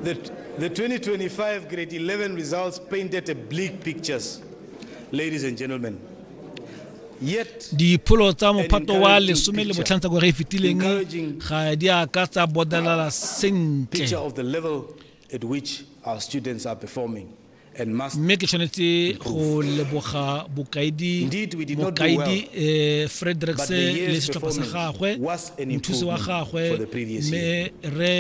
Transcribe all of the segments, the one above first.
The, the 2025 grade 11 results painted a bleak picture, ladies and gentlemen. dipholo tsa mophato wa lesome le botlhano tsa gore e fetileng ga di a ka tsa bodelala sentle mme ke tshwanetse go leboga bokaedi mokaedi um eh, fredericks le setlhopha sa gagwe mothusi wa gagwe mme re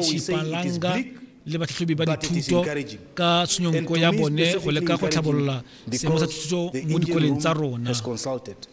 shipalanga le batlhatlhobi ba dithuto ka tshwenyonko ya bone go leka go tlhabolola seemo sa thuto mo dikoleng tsa rona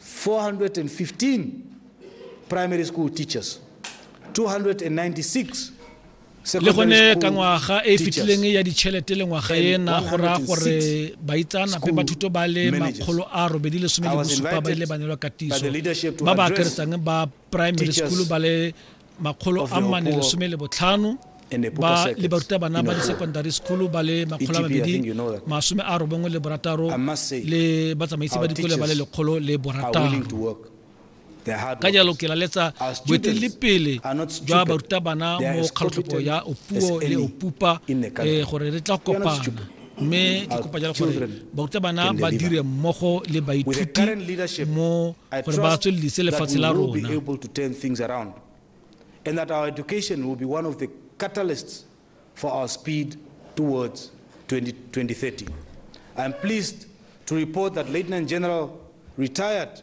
415 primary school teachers, 296 le gone ka ngwaga e fitileng ya ditšhelete le ngwaga ena go raya gore baitsanape ba thuto ba le makgolo a robedi lesome le bosupa ba ile ba neelwa katiso ba ba akeresang ba primary school ba le makgolo a mane lesome le botlhano ba le barutabana ba di-secondary school ba le makgolo a mabedi masome a robongwe le borataro le batsamaisi ba dikole ba le lekgolo le borataro ka jalo ke laletsa boeteledipele jwa barutabana mo kgatlhopo ya opuo le opupa eh, gore re tla kopana mme ke kopa jalo gore barutabana ba dire mmogo le baithuti mo gore ba tswelelise lefatshe la rona and that our education will be one of the catalysts for our speed towards 20, 2030. I'm pleased to report that Lieutenant General retired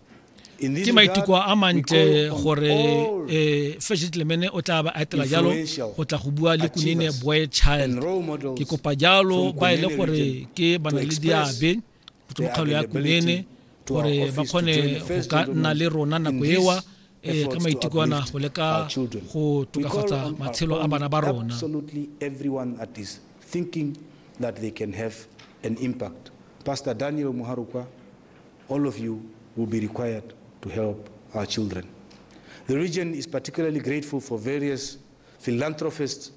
ke maiteko a mantle gore um eh, first gentleman o tla ba etela jalo go tla go bua le kunene boy child ke kopa jalo ba e le gore ke bana le diabe go tswa kgalo ya kunene gore ba kgone go ka nna le rona nako ewa eh, ka maiteko ana go leka go tokafatsa matshelo a bana ba rona thinking that they can have an impact. Pastor Daniel Muharukwa, All of you will be required to help our children. The region is particularly grateful for various philanthropists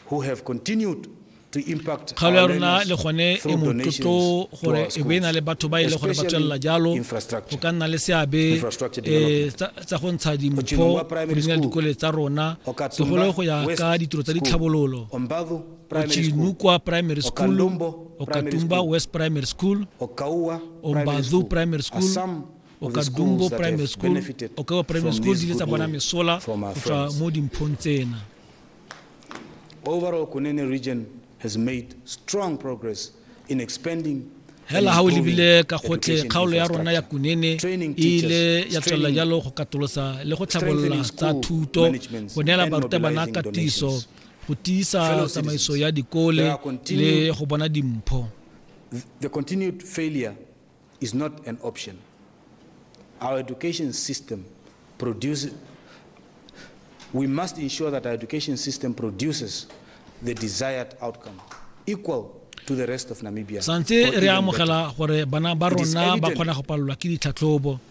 who have continued kgaolo ya rona le gone e motlotlo gore e be e na le batho ba e le gore ba tswelela jalo go ka nna le seabe eh, tsa go ntsha dimpho go dikole tsa rona segolo go ya ka ditiro tsa ditlhabololo Ochinukwa Primary School, Okatumba West Primary School, Ombadhu Primary School, Okadumbo Primary School, Okawa Primary School di letsa bona mesola go tswa mo dimphong tsena. Overall, Kunene region has made strong progress in expanding hela ha o lebile ka gotlhe kgaolo ya rona ya kunene e ile ya tswelela jalo go katolosa le go tlhabolola tsa thuto go neela barutabana katiso go tiisa tsamaiso ya dikole le go bona dimpho the continued failure is not an option our education system produces we must ensure that our education system produces the desired outcome equal to the rest of Namibia santse re amogela gore bana ba rona ba kgona go palelwa ke ditlhatlhobo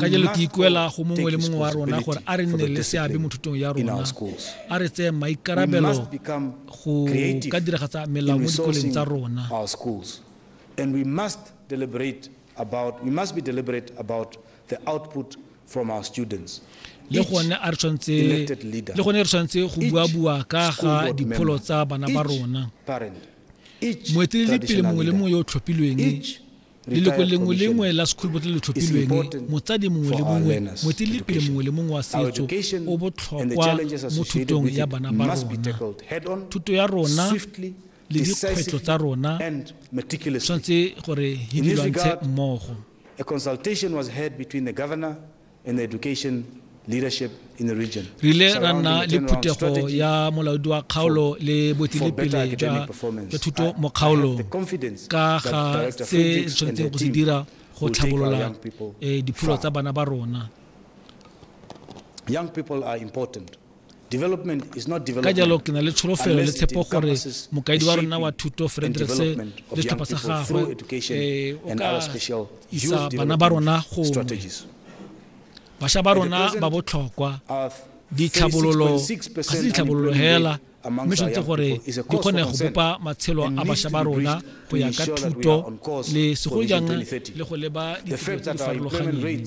ka jalo ke ikuela go mongwe le mongwe wa rona gore a re nne le seabe mo thutong ya rona a re tseye maikarabelo go ka diragatsa melao mo dikoleng tsa rona and we must deliberate about we must be deliberate about the output from our students le gone a re tshwanetse le gone re tshwanetse go bua bua ka ga dipholo tsa bana ba rona mo etelele pele mongwe le mongwe yo o tlhophilweng leloko lengwe lengwe la sekholobo le le tlhophilweng motsadi mongwe le mongwe moetelele pele mongwe le mongwe wa setso o botlhokwa mo thutong ya bana ba rona thuto ya rona le dikgwetlho tsa rona tshwanetse gore di lwantshe mmogo in education leadership in the region. Re ile ra nna le phuthego ya molaodi wa kgaolo le boetelepele jwa thuto mo kgaolong ka ga se tshwanetseng go se dira go tlhabolola eh, dipholo tsa bana ba rona ka jalo ke na le tsholofelo le tshepo gore mokaedi wa rona wa thuto fredericks le setlhopha sa gagwe eh, o ka isa bana ba rona gongwe bašwa ba rona ba botlhokwa ditlhabololo ga se ditlhabololo hela mme tshwanetse gore di kgone go bopa matshelo a bašwa ba rona go ya ka thuto le segolo jang le go leba ditiro tse di farologaneng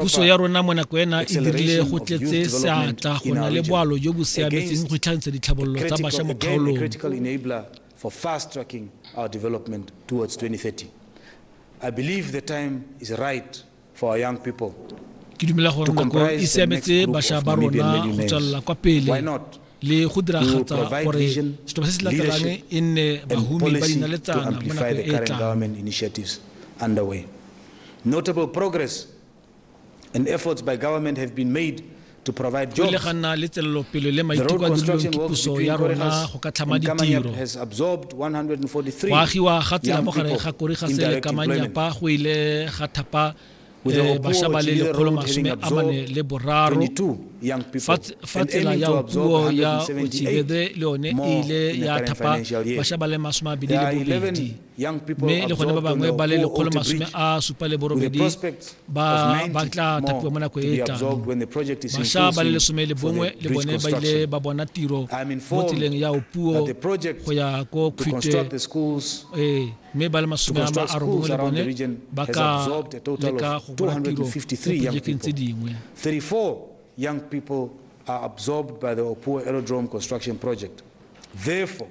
Puso ya rona mo nako ena e dirile go tletse seatla go na le boalo jo bo siametseng go itlhagisa ditlhabololo tsa bašwa mo kgaolong for fast tracking our development towards 2030. I believe the time is right for our young people. Ke dumela gore nako e siametse bašwa ba rona go tswelela kwa pele. le go diragatsa gore setlhopha se se latelang e nne bahumi ba dinaletsana mo nakong e tlang Notable progress and efforts by government have been made to provide jobs. Le ga nna le tswelelopele le maiteko a dirilweng ke puso ya rona go ka tlhama ditiro. Go agiwa ga tsela mo gare ga Korigas le Kamanyapa go ile ga thapa eh, basha ba le lekgolo masome a mane le boraro fa tsela ya puo ya otibede le yone e ile ya thapa basha ba le masome a bedi le bobedi mme le gone ba bangwe ba le lekgolo masome a supa le borobedi ba tla thapiwa mo nako e e tlang basha ba le lesome le bongwe le bone ba ile ba bona tiro mo tseleng ya opuo go ya ko khute ee mme ba le masome a ma a robongwe le bone ba ka leka go bona tiro mo projekeng tse dingwe young people are absorbed by the Opua Aerodrome construction project. Therefore,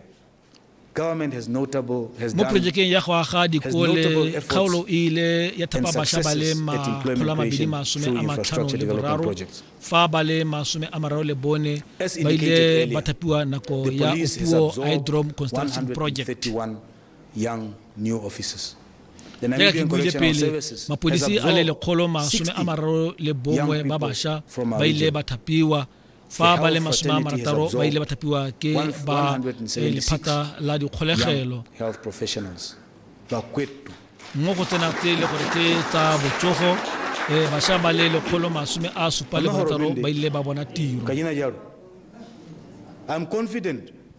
government has notable has done, projekeng ya go aga dikole kgaolo e ile ya thapa basha ba le makgolo a mabedi masome a matlhano le boraro fa ba le masome a mararo le bone ba ile ba thapiwa nako ya Opuo Hydrom Construction Project. young new officers. The jaaka ke Namibian buile Correctional pele Services has mapodisi a le absorbed lekgolo masome a 60 mararo le young bongwe ba people basha from our ba ile region. ba thapiwa fa The ba le health masome a fraternity has marataro ba ile ba absorbed thapiwa ke one- ba 176 eh, lephata la dikgolegelo young health professionals. Bakwetu. mo go tsena tse e le gore ke tsa botsogo eh, basha ba le lekgolo masome a supa le Mme gore barataro o bende. ba ile ba bona tiro Kanyina jalo. I'm confident